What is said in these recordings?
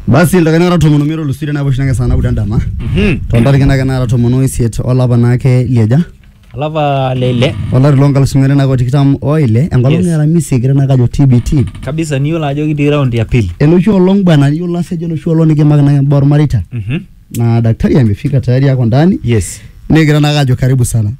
basi ildaikani naara tomon omiet olusiri naapuo oshi nake saa naudo endama tontariki nake naara tomon oisiet olapa naake lieja olapa leile olari lonkalusuni are nake otikitam oile enkolong Yes. niara misi egira nake ajo tbt kabisa niyiolo ajo kitii round ya pili enoshi olong bwana niyiolo asejo enoshi olong nikimaki nake imbaa ormareita Mhm. na daktari amefika tayari ako ndani yes negira nake ajo karibu sana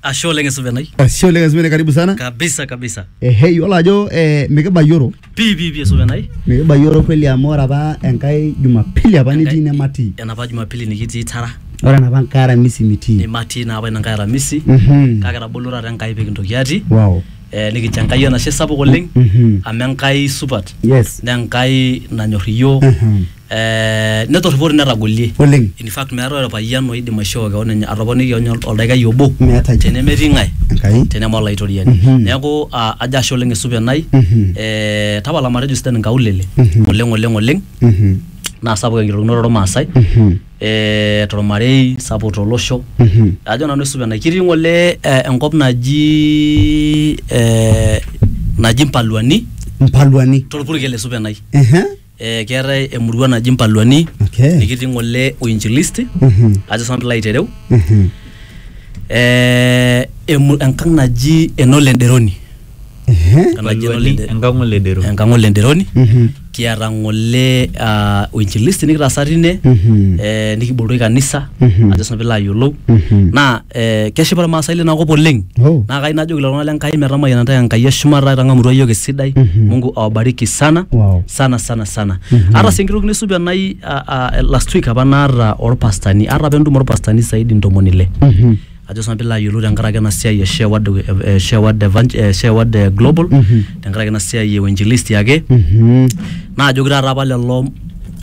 ashe oleng esuvenai Ashe oleng Esmene, karibu sana. kabisa kabisa Ehe, yiolo ajo eh, mikibayioro pii pii pii esuvenai mikibayioro kweli amu ore apa enkae jumapili apa nitii nematii enapa jumapili nikitii tara ore enapa nkae aramisi mitii nimatii naa apa ina nkae aramisi Mhm. kake etabolo taata enkai pikintoki atii wow eh, nikincho enkai enashe sapuk oleng Mhm. amu enkai supat yes naa enkai nanyor iyiook Mhm. eh, netorripori netagolie Oleng. in fact meetae orpayian oidim aishoo kewon enye atoponiki kewon ol- oldaikai obo Meetae. tenemetii ng'ae Enkai. teneme olaitoriani Mhm. neeku ah, ajo ashe oleng esupa enai Mhm. eh, tapala matejo sidan inkaulele Mhm. oleng oleng oleng Mhm. naa sapuk enkitokinoto ormaasai Mhm. eh, tormarei sapuk tolosho Mhm. ajo nanu esupa enai kitii ng'ole eh, enkop naji eh, naji mpaluani Mpaluani. torpurkel esupa enai Ehe. Eh, keetae emurua naji Mpaluani Okay. nikitii ng'ole uinjilisti Mhm. ajo sanu pilo aitereu Mhm. eh, emu, enkang naji enole nderoni Ehe. Enkang naji Enole Nde- enkang'o ledero enkang ole nderoni Mhm. kiata ng'ole ah, uinjilisti nikitaasa tine Mhm. eh, nikiboloki kanisa Mhm. ajo sanu pilo ayiolou Mhm. naa Eh, keshipa irmaasai lina kop oleng Oh. naa kai najoki lelo tung'anak le Nkai metamayiana ntae Enkai eshumata itang'amutua iyiook esidai Mungu awabariki sana Wow. sana sana sana ata sii enkirukino esupi enai ah, ah, last week apa naata orpastani ata apa entumo orpastani saidi ntomoni ile ajo sinanu piilo ayiolou tenkaraki ena siai e share word, eh, share word, evang- eh, share word eh, global tenkaraki ena siai e uinjilisti ake naajoki taata apa lelo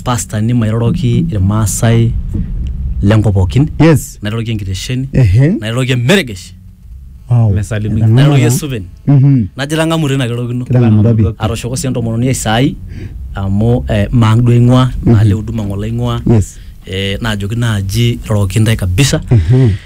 pastani mairoroki irmaasai lenkop pookin yes nairoroki enkitesheni ehe nairoroki emeregesh wow Mesalimika. Etang'amua nairoroki naa. esuven Mhm. najo itang'amu tina kirorokino Kitang'amutua pi. atoshoko sii entomononi ai saai amu eh, maang duo aing'ua naa le huduma ng'ole aing'ua yes eh, naajoki naaji iroroki intae kabisa Mhm.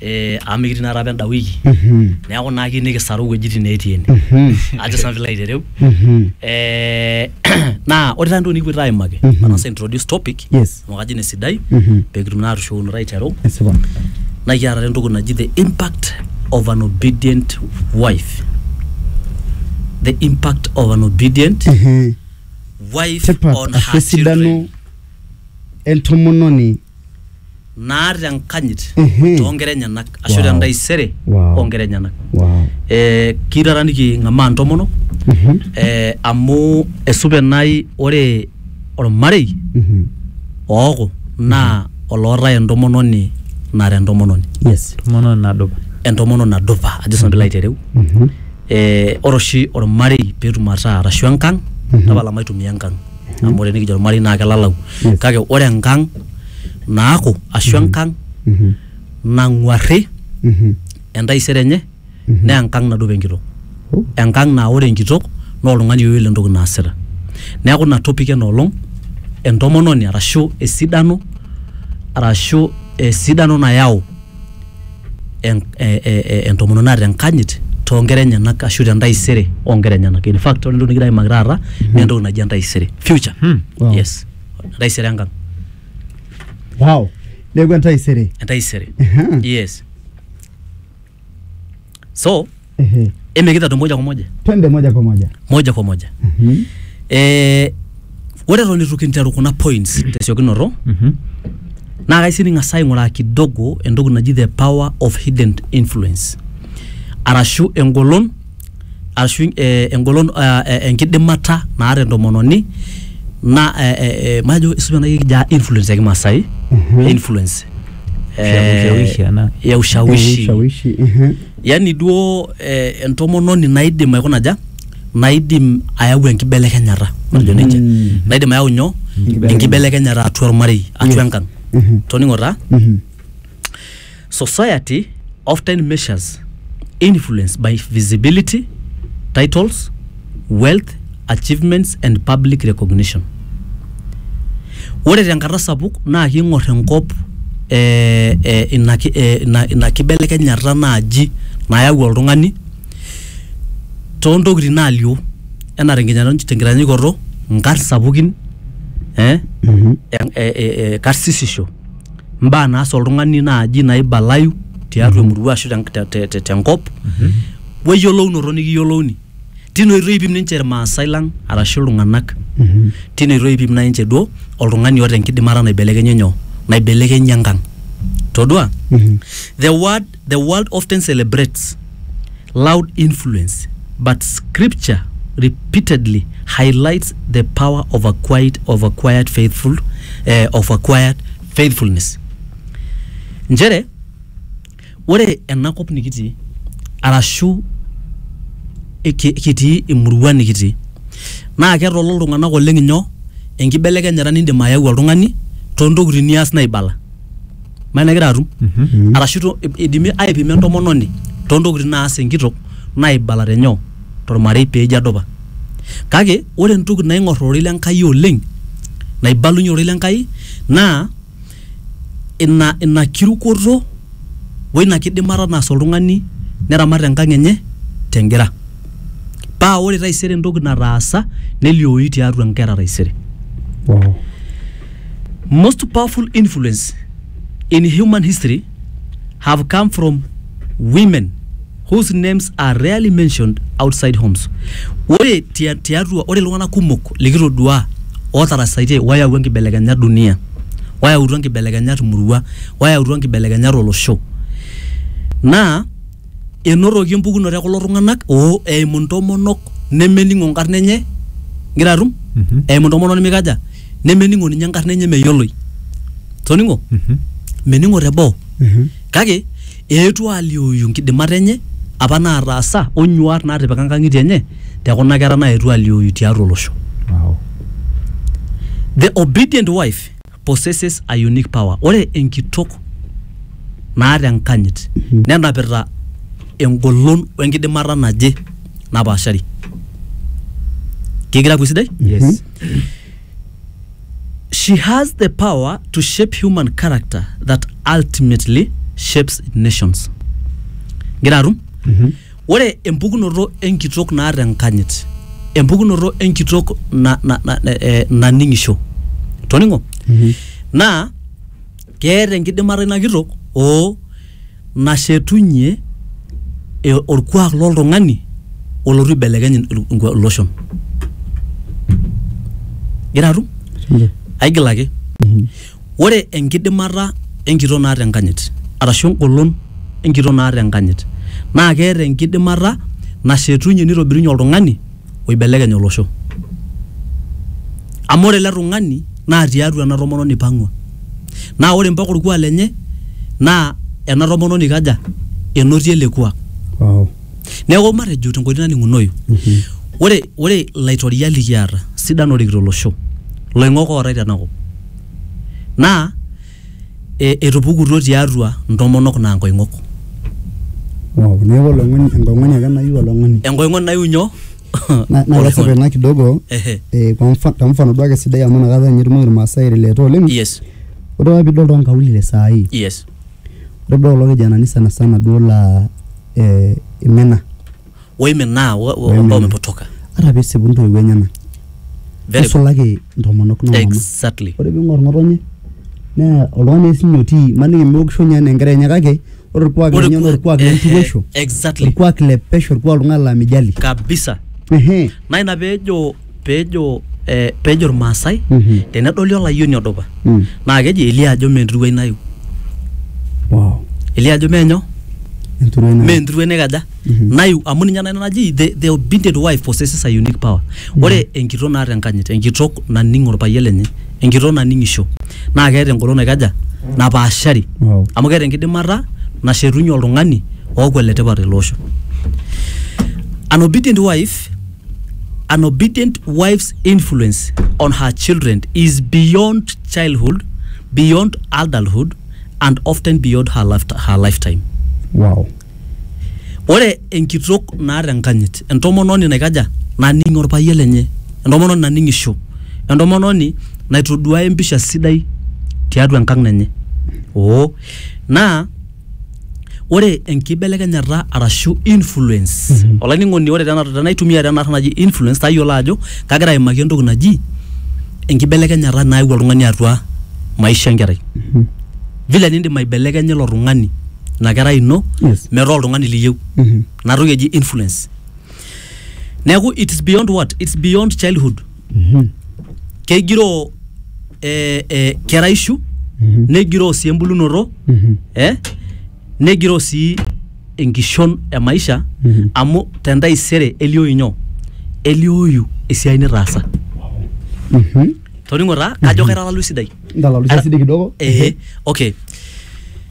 eh, amu mikitii naata apa enda wiki Mhm. neeku naa kiyieu nikisaru iwuejitin neetii ene Mhm. ajo sanu pilo aitereu Mhm. Eh, naa ore taa entoki nikipuoito aimaki Mhm. manasa introduce topic Yes. amu kajo ine sidai Mhm. pekitum naa atushukunoto aiteru Esipa. naa kiata taa entoki naji the impact of an obedient wife the impact of an obedient Mhm. wife Tipat on ashu her esidano children entomononi naata enkanyit Ehe. too nkera enyenak ashu Wow. tentaisere Wow. oo nkera enyenak Wow. Eh, kiyieu taata niking'amaa intomonok Mhm. eh, amu esupa enai ore ormarei Mhm. ooku naa olootae entomononi nara entomononi Yes. Tomono nadupa. entomononi nadupa ajo sinanu piilo aitereu Mhm. eh, ore oshi ormarei peetum ataa arashu enkang Mhm. tapala maitumia enkang amu ore nikijo ormarei naa kelalau Yes. kake ore enkang naaku ashu enkang Mhm. nang'uarri Mhm. entaisere enye naa enkang nadup enkitok Oh. enkang naa ore enkitok naa oltung'ani oyiolo entoki naasita neeku ina topic ena olong entomononi arashu esidano arashu esidano nayau en- e- e- e- entomononi naata enkanyit toonkera enyenak ashu tentaisere oonkera enyenak in fact ore entoki nikigira aimaki taata naa entoki naji entaisere future Hmm. Wow. yes entaisere enkang wow neeku entaisere entaisere Ehe. yes so Ehe. emekitado moja kwa moja Twende moja kwa moja. moja kwa moja Mhm. eh, ore eton itu kinteru kuna points tesiokinoto Mhm. naa kaisi ning'as aing'uraa kidogo entoki naji the power of hidden influence arashu engolon arashu eh, engolon eh, eh, enkidimata naata entomononi na eh, eh, eh, majo isume nai kija influence ya kimasai Mhm. influence Ushawishi, ana. ya ushawishi Ushawishi. Ehe. Yani duo eh, entomononi naidim aikuna aja naidim ayau enkibelekenyata matejo nejia naidim ayau nyoo enkibelekenyata atua ormarei atua enkang toning'o taa society often measures influence by visibility titles wealth, achievements and public recognition. Ore tenkata sapuk naa kiing'or enkop ee ee ina ki ee ina ina kibelekenyata naaji nayau oltung'ani too ntokitin naalio enaa tenkinyano tenkitanyanyukoto nkarn sapukin ee ee karsisisho, mbaa naas oltung'ani naaji naibalayu tiatua emurua ashu te te tenkop we yolounoto nekiyolouni. tine oitoi ipim ninche irmaasai lang arashu iltung'anak tine oitoi ipim nai ninche duo oltung'ani oota enkidimata naibelekenye nyoo naibelekenye enkang todua the word the world often celebrates loud influence but scripture repeatedly highlights the power of a quiet of a quiet faithful eh, of a quiet faithfulness nchere Ore ena kop nikitii arashu kitii emurua nikitii naa ketolo iltung'anak oleng inyoo enkibelekenyata nindim ayau oltung'ani tontokitin nias naibala imaniki naa igira atum arashu to idimi aipima entomononi tontokitin naas enkitok naibala tenyoo tormarei peeji adupa kake ore entoki naing'orr ororei le Enkai oleng naibalunyie ororei le Enkai naa. ina ina kirukoto woina kidimata naas oltung'ani neramat enkang enye tengira paa ore taisere entoki nataasa neliooyu tiatua inkera taisere Wow. most powerful influence in human history have come from women whose names are rarely mentioned outside homes ore tia- tiatua ore iltung'anak kumok likitoduaa ootarasaitie wayawua nkibelekenyat dunia wayautua nkibelekenyat murua wayautua nkibelekenyat olosho naa enotoki empukunoto ekulo tung'anak oo eimu ntomonok nemening'o nkarn enye ingira atum Mhm. eimu ntomonok nimikaja nemening'o ninye enkarna enye meyioloi toning'o Mhm. mening'o teboo Mhm. kake Eetuo aaliooyu nkidimat enye apa naataasa o nyuaat naatipika nkang'itie enye te kuna kera naetuo aaliooyu tiatua olosho. The obedient wife possesses a unique power Ore enkitok naata enkanyit nenapita engolon o enkidimata naje napaashari. Kegira aapuo esidai? Yes. She has the power to shape human character that ultimately shapes nations. Ngira atum? Ore empukunoto enkitok naata enkanyit, empukunoto enkitok na, na, na, eh, naning'isho. Toning'o? Naa keeta enkidimata ina kitok oo nashetunye e, orkuak loltung'ani olotu aibelekeny il- inkua- iloshon gira atum Ehe. aigil ake ore enkidimata enkitok naata enkanyit arashu engolon enkitok naata enkanyit naa keeta enkidimata nashetunye nitobirunye oltung'ani oibelekeny olosho. Amu ore ele tung'ani naa tiatua ena tomononi ipang'ua naa ore mpaka orkuak lenye naa ena tomononi ikaja? enotie ele kuak. Wow. Neeku matejo tenkoitoi naning'unoyu, ore ore ilaitoriak likiata sidan oorikito olosho, iloing'ok ootae tenakop naa e, etupukutuo tiatua ntomonok naa nkoing'ok. Wow, neeku oloing'oni enkoing'oni ake nayu oloing'oni. Enkoing'oni nayu nyoo? Na- naa kesipa Oloing'oni. ina kidogo Ehe. eh, kwa mfa- te mfano duake sidai amu inakata ninye etumoki irmaasai aireleta oleng Yes, ore apa piidol toonkaulele saa hii yes. ore duo kulo kijanani sana sana duo laa eh, imina woiminaa wo- wo- ambao Woiminaa. wamepotoka ata pisipu ntoiwuo enyena Very good. nisulaki ntomonok nomama exactly ore ping'or ng'otonye naa oltung'ani ake sinye otii maniki meokisho ninye anaa enkerai enye kake ore orkuak Ore lenye naa ku- orkuak eh, eh, lenturuisho exactly orkuak le pesho orkuak oltung'ani laa mijali kabisa ehe naa ina peejo pejo eh, pejo irmaasai Mhm. tenedoli olayioni odupa Mm. naa keji elio ajo mee enturuai nayu wow elio ajo menyo enturuo ina mee enturuai naikaja Mhm. nayu amu ninye nanu naji the, the obedient wife possesses a unique power ore enkitok naata enkanyit enkitok naning orpayian lenye enkitok naning'isho naa keeta engolon naikaja napaashari wow amu keeta enkidimata nashetunye oltung'ani ooku oletipat tele osho an obedient wife An obedient wife's influence on her children is beyond childhood, beyond adulthood, and often beyond her, life, her lifetime. wow Ore enkitok naata enkanyit, entomononi naikaja, naning orpayian lenye, entomononi naning'isho, entomononi naitoduaya empisha sidai tiatua enkang' enye. Oo, naa ore enkibelekenyata arashu influence mm -hmm. olainining'oni ore tenaitumia tena arna naji influence tayiolo ajo kagira aimaki entoki naji enkibelekenyata naewuo oltung'ani atua maisha enkerai mm -hmm. vile nindim aibelekenya ilo tung'ani ina kerai ino yes. metaa oltung'ani liyieu mm -hmm. inatoki eji influence neeku it's beyond what it's beyond childhood kegiroo eh, eh, keraishu negiroo sii embulunoto eh, negiroo sii enkishon e maisha amu tentaisere elioyu nyoo elioyu esiai nitaasa toning'o taa kajo kaitalalu esidai ndalalusia sidai kidogo eh, okay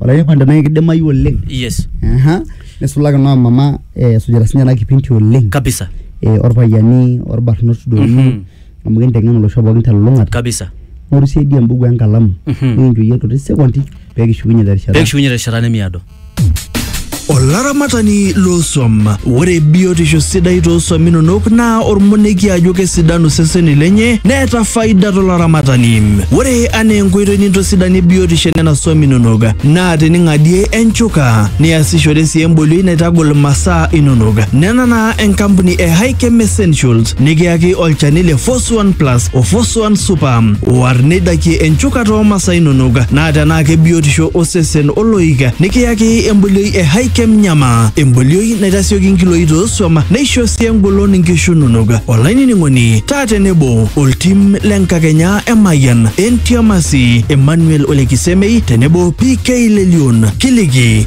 Olairipani tenaa kidimayu oleng. Yes. Aha. Nisulaki noo mama esujita sinye ena kipinti oleng. Kabisa. Orpayiani orbarnot doi. Mm -hmm. Amu kinteng'en olosho pookin telulung'ata. Kabisa. Ng'oru siyie dii ebuku enkalamu. Mm -hmm. Nikinchooyie irkuti sekondi pekishukunye terishata. Pekishukunye terishata nemiado. Olaramatani loosuam. Ore biotisho sidai toosuam inonok naa ormonekie ajo kesidanu seseni lenye neeta faida tolaramatani. Ore anaa enkoitoi nintosidanie biotisho enena suam inonok naa tening'adie enchuka niasishore sii embolioi naitagol masaa inonok. Nena naa enkampuni e Hikem Essentials nikiyaki olchani le Fos Suan Plus o Fosuan Super. War neidakie enchukata oo masaa inonok naa tenaa kebiotisho osesen oloik nikiyaki embolioi e Hikem Nyama. Embolioi naitasioki nkiloi toosuam neisho sii engolon nkishu inonok. Olainining'oni taa tenebo oltim le nkakenya e Mayian, Entiamasi, Emmanuel Olekisemei tenebo PK Lelion. Kiliki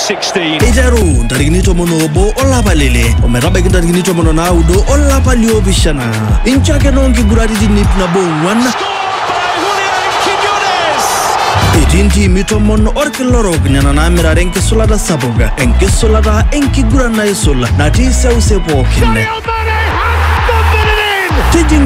16. eiteru ntarikini tomon oobo olapa lele ometabaiki ntarikini tomon o naudo olapa liopishana incho ake noo nkiguraritin ip nabo ong'uan By Julian Quiñones. etii ntiimi tomon orkila orok nena naamirare enkisulata sapuk enkisulata enkiguran naisul natii seuse pookin Sadio Mane has thumped it in. tijing'a